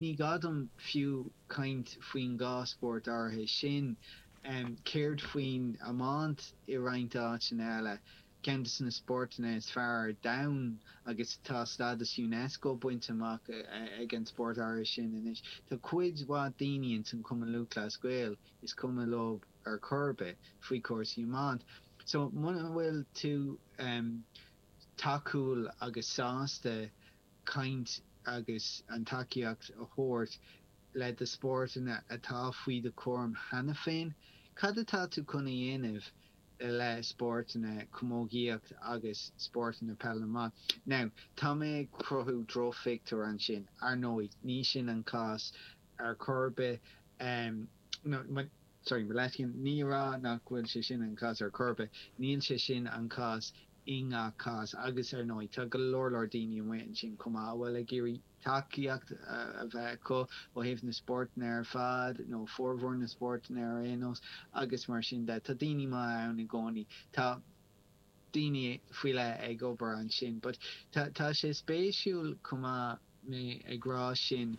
Ní gá dom fiú caint faoin dhá spórt áirithe sin. Céard faoin iomáint i roinnt áiteanna eile, ceann de na spórtanna is fearr ar domhan agus tá stádas Unesco bainte amach ag an spórt áirithe sin anois. Tá cuid mhaith daoine ins an Chumann Lúthchleas Gael is cuma leo ar chor ar bith faoi chúrsaí iomána. So muna bhfuil tú tacúil agus sásta caint agus an tacaíocht a thabhairt le do spórtanna atá faoi do chúram cheana féin. Cad atá tú chun a dhéanamh i leith spórtanna, camógaíocht agus spórtanna peil na mban? Now, tá mé ag cruthú drochphictiúir ansin, ar ndóigh, ní sin an cás ar chor ar bith. No, sorry, mo leithscéal, ní ag rá nach bhfuil sé sin an cás ar chor ar bith, níl sé sin an cás. i ngach cás agus ar ndóigh tá go leor leor daoine amuigh ansin chomh maith a bhfuil ag iarraidh tacaíocht a bheith acu ó thaobh na spórtanna ar fad nó formhór na spórtanna ar aon nós agus mar sin de tá daoine maithe ann i gcónaí. Tá daoine faoi leith ag obair ansin but tá sé spéisiúil chomh maith mé ag rá sin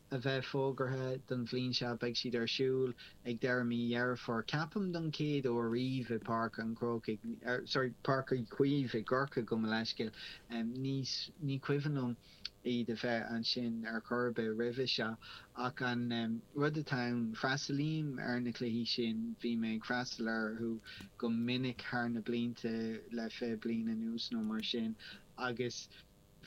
a bheith fógartha don bhliain seo. Beidh siad ar siúl ag deireadh mí Dheireadh Fómhair, ceapaim, don chéad uair riamh i bPáirc an Chró, sorry, Páirc Uí Chaoimh i gCorcaigh, gabh mo leithscéal. Ní cuimhin liom iad a bheith ansin ar chor ar bith roimhe seo. Ach an rud atá ann, freastalaím ar na cluichí sin, bhí mé ag freastal orthu go minic thar na blianta, le 20 bliain anuas nó mar sin, agus.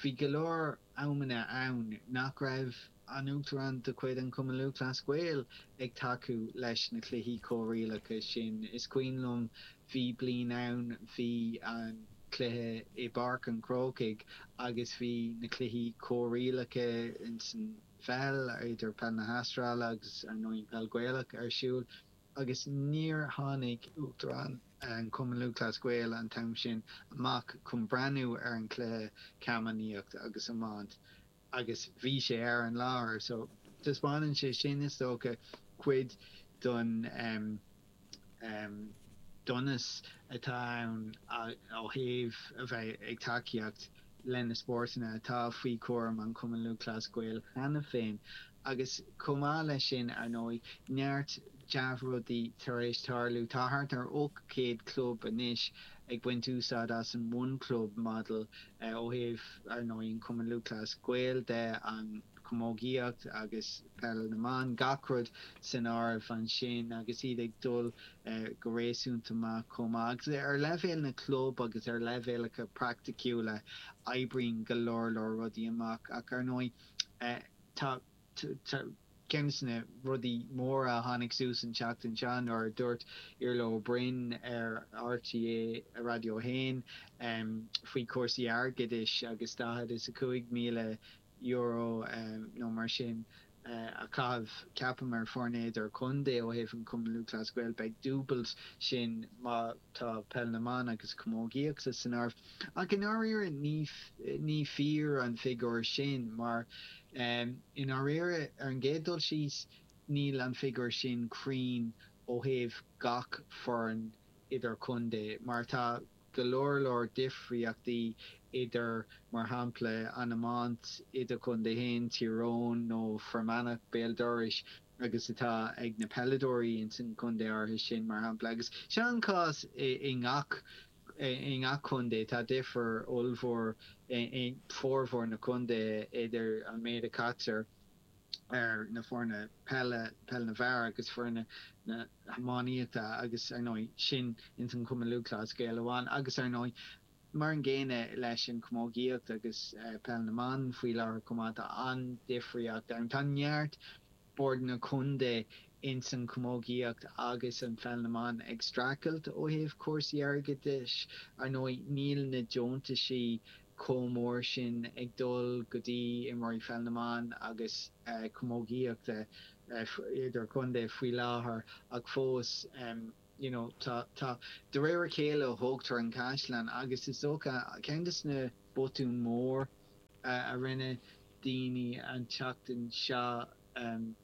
Bhí go leor amanna ann nach raibh an tUachtarán de chuid an Chumainn Lúthchleas Gael ag tacú leis na cluichí comhrialacha sin. Is cuimhin liom, bhí bliain ann, bhí an cluiche i bPáirc an Chrócaigh agus bhí na cluichí comhrialacha insan pheil, idir peil na hAstráile agus, ar ndóigh, an peil Ghaelach ar siúl. agus níor tháinig Uachtarán an Chumainn Lúthchleas Gael an t-am sin amach chun breathnú ar an chluiche camanachd agus iomáint agus bhí sé ar an láthair so taispeánann sé sin is dócha cuid den donas atá ann ó thaobh a bheith ag tacaíocht leis na spórtanna atá faoi chúram an Chumainn Lúthchleas Gael cheana féin Agus chomh maith leis sin, ar ndóigh, neart dea-rudaí tar éis tarlú. Tá thart ar 800 club anois ag baint úsáid as an One Club Model ó thaobh, ar ndóigh, an Cumann Lúthchleas Gael de, an chamógaíocht agus peil na mban, gach rud san áireamh ansin agus iad ag dul go réasúnta maith chomh maith. Agus ar leibhéal na gclub agus ar leibhéalacha praiticiúla, oibríonn go leor leor rudaí amach ach, ar ndóigh, Tá ceann des na rudaí móra a tháinig suas an tseachtain seo nuair a dúirt Iarlaith Ó Broin ar RTÉ Raidió 1 faoi chúrsaí airgeadais agus daichead is a cúig míle euro nó mar sin a chaitheamh, ceapaim, ar fhoirne idir-chontae ó thaobh an Chumainn Lúthchleas Gael. Beidh dúbailt sin má. Tá Peil na mBan agus Camógaíochta san áireamh ach i ndáiríre ní fíor an figiúr sin mar i ndáiríre ar an gcéad dul síos níl an figiúr sin cruinn ó thaobh gach foireann idir contae mar tá go leor leor difríochtaí idir mar shampla an iomáint idirchontae féin, Tír Eoghain nó Fear Manach, béal dorais. agus atá ag na peileadóirí ins an chontae áirithe sin mar shampla agus sé an cás i ngach i ngach contae tá difear ollmhór i bhformhór na contaetha idir an méid a chaitear ar na foirne peile, peil na bhfear agus foirne na hiománaíochta agus ar ndóigh sin ins an Chumann Lúthchleas Gael amháin agus ar ndóigh. Mar an gcéanna leis an gcamógaíocht agus peil na mban faoi láthair chomh maith, tá an-difríocht ann. Tá neart bord na contae ins an gcamógaíocht agus an peil na mban ag streachailt ó thaobh cúrsaí airgeadais. Ar ndóigh, níl na deontaisí chomh mór sin ag dul go dtí imreoirí pheil na mban agus camógaíochta idir-chontae faoi láthair ach fós, you know tá tá de réir a chéile a thógtar an caisleán agus is dócha ceann des na botúin mór a rinne daoine an tseachtain seo um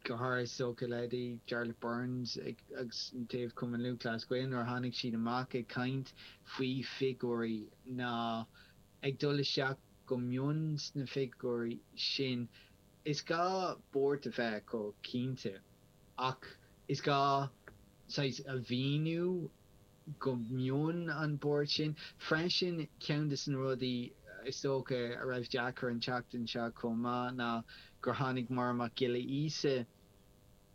go háirithe is dócha leithéidí Jarlath Burns ag agus an taobh Cumann Lúthchleas Gael nuair a tháinig siad amach ag caint faoi figiúirí ná ag dul isteach go mion sna figiúirí sin Is gá buairt a bheith acu, cinnte, ach is gá, saghas, a mhíniú go mion an buairt sin. Freisin, ceann des na rudaí is dócha a raibh deacair an tseachtain seo chomh maith ná gur tháinig Máire Mac Giolla Íosa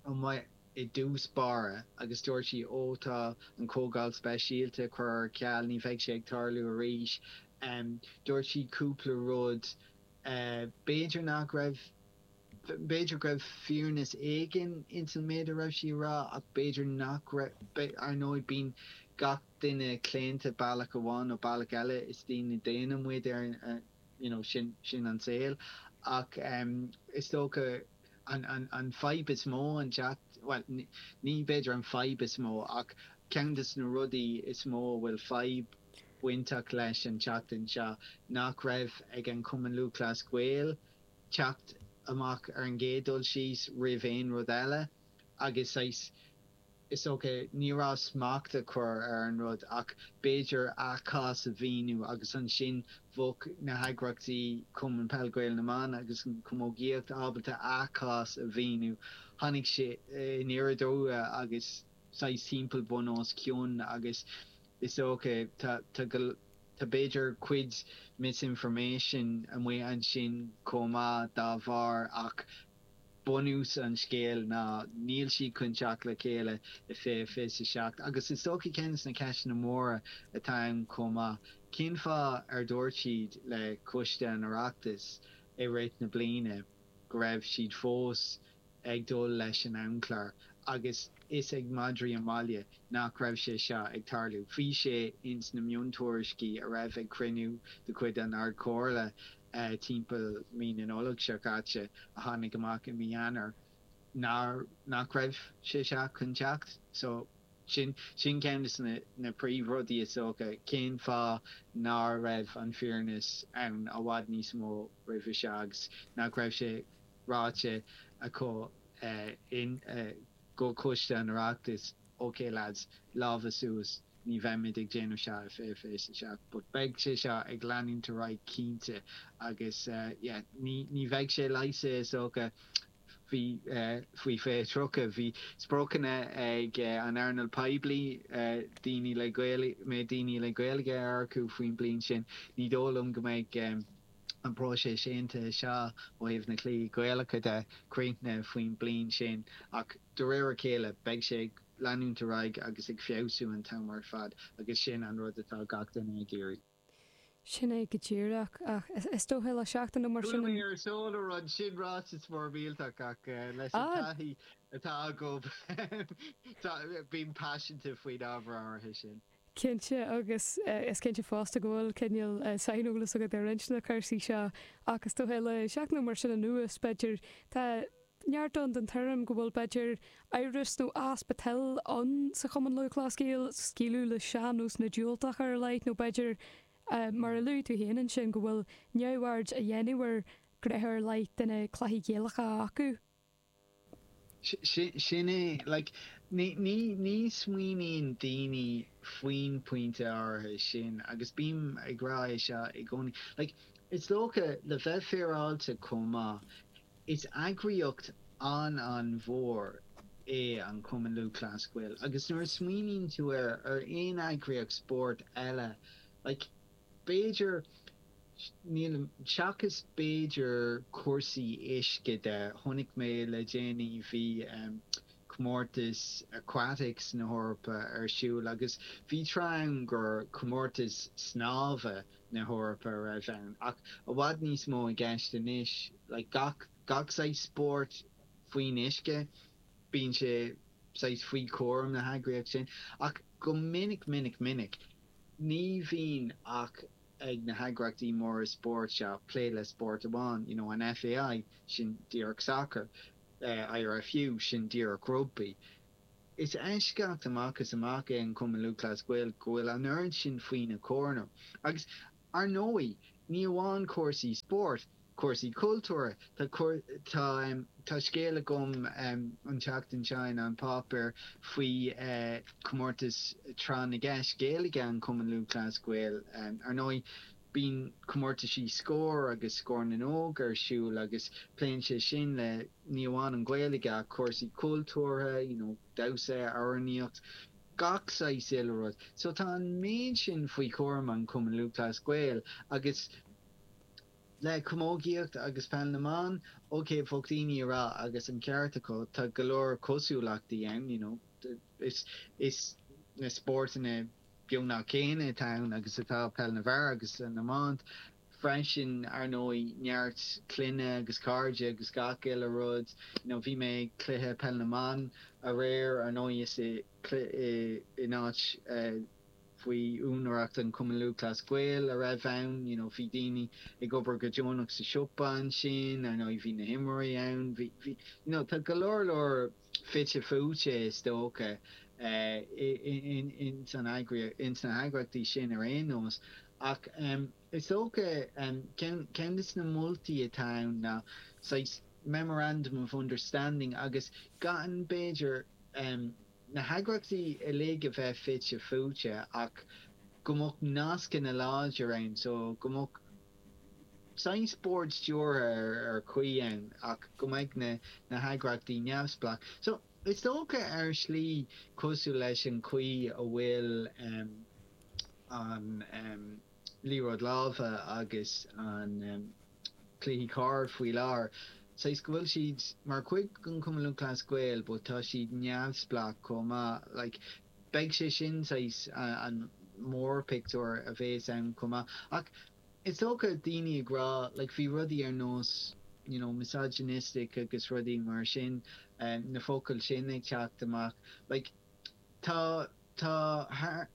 amach i dtús báire agus dúirt sí, Ó, tá an Chomhdháil Speisialta a chur ar ceal, ní bheidh sé ag tarlú arís. Dúirt sí cúpla rud. B'fhéidir nach raibh, b'fhéidir go raibh fírinne éigin ins an méid a raibh sí a rá ach b'fhéidir nach raibh. Ar ndóigh bíonn gach duine claonta bealach amháin nó bealach eile, is daoine daonna muid, you know, sin, sin an saol. Ach is dócha an, an, an fadhb is mó an teacht, bhuel ní, ní b'fhéidir an fadhb is mó ach ceann des na rudaí is mó a bhfuil fadhb, bainteach leis an tseachtain seo nach raibh ag an Cumann Lúthchleas Gael teacht amach ar an gcéad dul síos roimh aon rud eile agus saghas, is dócha, ní abair smacht a chur ar an rud ach b'fhéidir a gcás a mhíniú agus ansin bheadh na heagraíochtaí, Cumann Peil Gael na mBan agus an Chamógaíocht, ábalta a gcás a mhíniú. Tháinig sé aniar aduaidh agus saghas timpeall bun os cionn agus Is dócha, tá, tá go, tá b'fhéidir cuid misinformation amuigh ansin chomh maith dá bharr ach bunús an scéil ná níl siad chun teacht le chéile i fiche fiche a seacht agus is dócha ceann de na ceisteanna móra atá ann chomh maith, cén fáth ar dhúirt siad le Coiste an Oireachtais i rith na bliana go raibh siad fós ag dul leis an amchlár agus fhios ag madraí an bhaile nach raibh sé seo ag tarlú. Bhí sé ins na miontuairiscí a raibh ag cruinniú de chuid an Ardchomhairle timpeall mí na Nollag seo caite a tháinig amach i mí Eanáir nach raibh sé seo chun teacht. So, sin sin ceann de na príomhrudaí is dócha, cén fáth ná raibh an fhírinne ann i bhfad níos mó roimhe seo agus nach raibh sé ráite acu go Coiste an Oireachtais, OK lads, lámha suas, ní bheimid ag déanamh seo i fiche fiche a seacht but beidh sé seo ag leanúint ar aghaidh cinnte agus yeah ní bheidh sé leigheasta is dócha faoi fiche tríocha, bhí spriocanna ag an earnáil poiblí daoine le Gaeilge, daoine le Gaeilge a earcú faoin bliain sin, ní dóigh liom go mbeidh. an próiseas aontaithe seo ó thaobh na cluichí Gaelacha de, críochnaithe faoin bliain sin ach de réir a chéile beidh sé ag leanúint ar aghaidh agus ag feabhsú an t-am ar fad agus sin an rud atá gach duine ag iarraidh. Sin é go díreach. Ach is dócha le seachtain nó mar Chuala sin mé an. ar Sól ar an, sin ráiteas mór millteach ach leis an Ah! taithí atá agam bím paiseanta faoin ábhar áirithe sin. Cinnte agus is cinnte fosta go bhfuil cineál saineolas agat ar roinnt de na cúrsaí seo ach is dócha le seachtain nó mar sin anuas, b'fhéidir, tá neart ann den tuairim go bhfuil, b'fhéidir, amhras nó easpa toil ann sa Chumann Lúthchleas Gael scaoileadh le sean-nósanna diúltacha ar a laghad nó b'fhéidir, mar a luaigh tú féin ansin, go bhfuil neamhaird á dhéanamh ar ghnéithe ar leith de na cluichí Gaelacha acu. Sin é. Like, ní smaoiníonn daoine faoin pointe áirithe sin agus bím ag rá é seo i gcónaí. Like, is dócha, le bheith féaráilte chomh maith, is eagraíocht an-an-mhór é an Cumann Lúthchleas Gael agus nuair a smaoiníonn tú air, ar aon eagraíocht spóirt eile, like, b'fhéidir, nílim, seachas b'fhéidir cúrsaí uisce de, chonaic mé le déanaí bhí comórtas aquatics na hEorpa ar siúl agus bhí tráth ann gur comórtas snámha na hEorpa a raibh ann ach tá i bhfad níos mó i gceist anois like gach gach saghas spóirt faoin uisce bíonn sé saghas faoi chúram na heagraíocht sin ach go minic minic minic Ní bhíonn ach ag na heagraíochtaí móra spóirt seo plé le spórt amháin, you know, an FAI, sin díreach sacar, IRFU, sin díreach rugbaí. Is eisceacht amach is amach é an Cumann Lúthchleas Gael go bhfuil an oiread sin faoina chúram agus, Ar ndóigh, ní amháin cúrsaí spóirt, cúrsaí cultúrtha, tá tá scéal agam an tseachtain seo in An Páipéar faoi chomórtas Tráth na gCeist Gaeilge an Chumann Lúthchleas Gael. Ar ndóigh, bíonn comórtaisí Scór agus Scór na nÓg ar siúl agus pléann sé sin le ní amháin an Ghaeilge ach cúrsaí cultúrtha, you know, damhsa, amhránaíocht, gach saghas uile rud. So tá an méid sin faoi chúram an Chumann Lúthchleas Gael agus le camógaíocht agus peil na mban, ok, bheadh daoine ag rá, agus an ceart acu, tá go leor cosúlachtaí ann, you know, is is na spórtanna beagnach céanna atá ann agus atá peil na bhfear agus na mban, Freisin, ar ndóigh, neart clainne agus cairde agus gach uile rud. You know, bhí mé ag cluiche peil na mban aréir, ar ndóigh is in áit faoi úinéireacht an Cumann Lúthchleas Gael a raibh ann. You know, bhí daoine ag obair go deonach sa siopa ansin, ar ndóigh bhí na himreoirí ann, bhí, bhí, you know, tá go leor leor. fite fuaite is dócha ins na heagraíochtaí sin ar aon nós ach is dócha ceann de na moltaí atá ann ná saghas memorandum of understanding agus gan b'fhéidir na heagraíochtaí uilig a bheith fite fuaite ach go mbeadh nascanna láidir ann so go mbeadh Seans bord stiúrtha amháin a chur ann ach go mbeidh na heagraíochtaí neamhspleách. So, is dócha ar shlí cosúil leis an chaoi a bhfuil an liathróid láimhe agus an cluichí corr faoi láthair, saghas go bhfuil siad mar chuid den Chumann Lúthchleas Gael but tá siad neamhspleách chomh maith. Like. Beidh sé sin saghas an mórphictiúir a bhéas ann chomh maith. Ach is dócha daoine ag rá like bhí rudaí ar nós you know misogynistic agus rudaí mar sin, na focail sin ag teacht amach. Like tá tá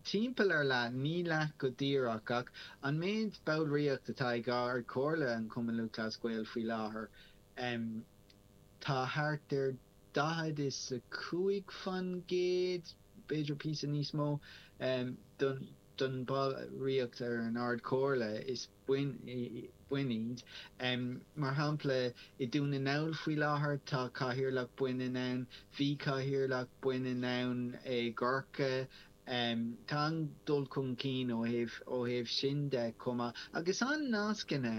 timpeall ar leath, ní leath go díreach ach an méid ballraíocht atá ag Ard Chomhairle an Chumann Lúthchleas Gael faoi láthair, em tá thart ar. daichead is a cúig faoin gcéad, b'fhéidir píosa níos mó, den bhallraíocht ar an Ard Chomhairle is baineannaigh iad. Mar shampla i Dún na nGall faoi láthair tá cathaoirleach baineann ann, bhí cathaoirleach baineann ann i gCorcaigh. Tá an dul chun cinn ó thaobh sin de chomh maith agus tá nascanna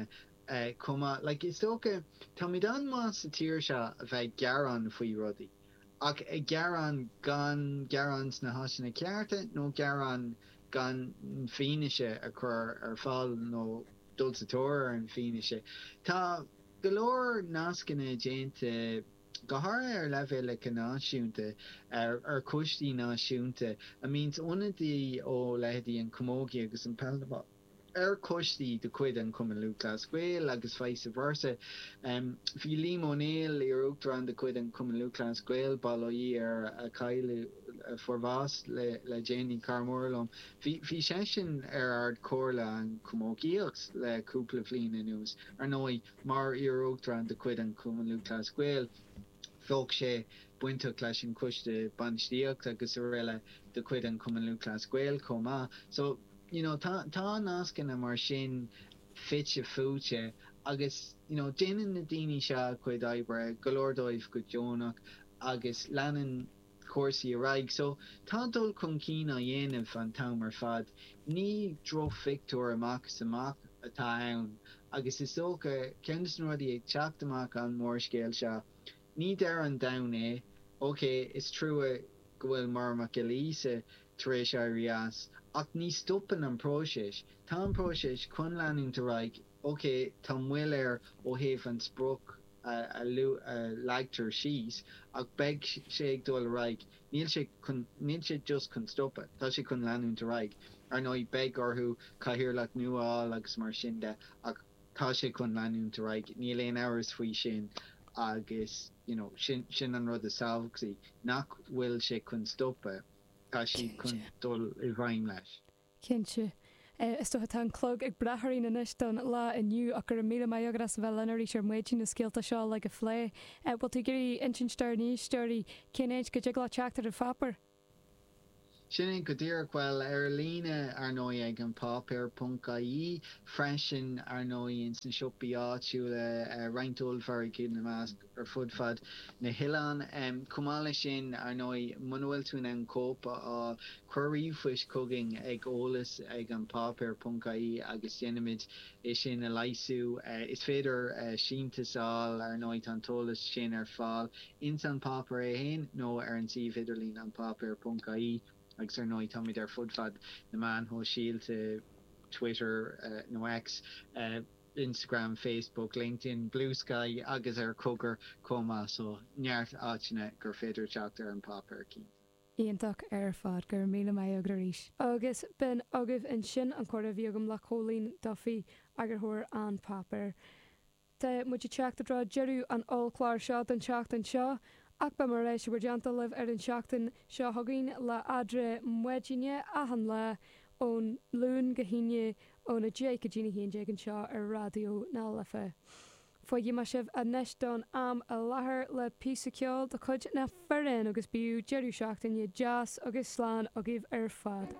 eh, chomh maith. Like, is dócha, táimid an-mhaith sa tír seo a bheith ag gearán faoi rudaí, ach ag gearán gan gearán sna háiteanna cearta nó gearán gan fianaise a chur ar fáil nó dul sa tóir ar an fianaise. Tá go leor nascanna déanta, go háirithe ar leibhéalacha náisiúnta, ar choistí náisiúnta a mbíonns ionadaí ó leithéidí an Camogie agus an Peil na mBan. ar choistí de chuid an Chumainn Lúthchleas Gael agus vice versa. Bhí Liam Ó Néill, iar-Uachtarán de chuid an Chumainn Lúthchleas Gael, bail ó Dhia air, a cailleadh, fuair bhás le déanaí, cara mór liom, bhí seisean ar Ard Chomhairle an Chamógaíochta le cúpla bhliain anuas. Ar ndóigh, mar iar-Uachtarán de chuid an Chumainn Lúthchleas Gael, bheadh sé bainteach leis an Choiste Bainistíocht agus araile de chuid an Chumainn Lúthchleas Gael chomh maith. So. You know, tá nascanna mar sin fite fuaite agus, you know, déanann na daoine seo a gcuid oibre, go leor díobh go deonach agus leanann cúrsaí ar aghaidh. So, tá dul chun cinn á dhéanamh an t-am ar fad. Ní drochphictiúr amach is amach atá ann agus is dócha, ceann des na rudaí ag teacht amach an mórscéal seo, Ní deireadh an domhain é. Ok, is trua go bhfuil Máire Mhic Giolla Íosa tar éis éirí as, ach ní stopann an próiseas. Tá an próiseas chun leanúint ar aghaidh. Ok, tá moill air ó thaobh an sprioc a leagtar síos, ach beidh sé ag dul ar aghaidh. Níl sé chun, níl sé just chun stopadh, tá sé chun leanúint ar aghaidh. Ar ndóigh, beidh orthu cathaoirleach nua a fháil agus mar sin de, ach. tá sé chun leanúint ar aghaidh, níl aon amhras faoi sin agus you know sin sin an rud is tábhachtaí, nach bhfuil sé chun stopadh, tá siad chun dul i bhfeidhm leis. Cinnte. Is dócha tá an clog ag breith orainn anois don lá inniu ach go raibh míle maith agat as a bheith linn arís ar maidin, na scéalta seo uilig a phlé. Bhfuil tú ag iarraidh insint dár n-éisteoirí cén áit go dtig leo teacht ar an pháipéar? Sin é go díreach. Bhuel, ar líne, ar ndóigh, ag an páipéar ponc ie freisin, ar ndóigh, ins na siopaí áitiúla, roinnt ollmhargaidh ina measc, ar fud fad na hoileáin. Chomh maith leis sin, ar ndóigh, muna bhfuil tú in ann cóip a fháil, cuir ríomhphoist chugainn ag eolas ag an páipéar ponc ie agus déanfaimid é sin a leasú. Is féidir síntiús a fháil, ar ndóigh, tá an t-eolas sin ar fáil ins an páipéar é féin nó ar an suíomh idirlín an páipéar ponc ie agus ar ndóigh táimid ar fud fad na meáin shóisialta, Twitter nó X, Instagram, Facebook, LinkedIn, Bluesky agus ar Cogar chomh maith so neart áiteanna gur féidir teacht ar an páipéar cinnte. Iontach ar fad. Go raibh míle maith agat arís. Agus b'in agaibh ansin an comhrá a bhí agam le Cóilín Duffy, eagarthóir An Páipéar. Tá muid ag teacht i dtreo deireadh an ollchláir seo don tseachtain seo, ach beidh mé ar ais déanta libh ar an tseachtain seo chugainn le Eadra Maidine achan lá ón Luan go hAoine ón 10 go dtí'n 11 anseo ar Raidió na Life. Fágfaidh mé sibh anois don am i lathair le píosa ceoil de chuid Na Fíréin agus bíodh deireadh seachtaine deas agus slán agaibh ar fad.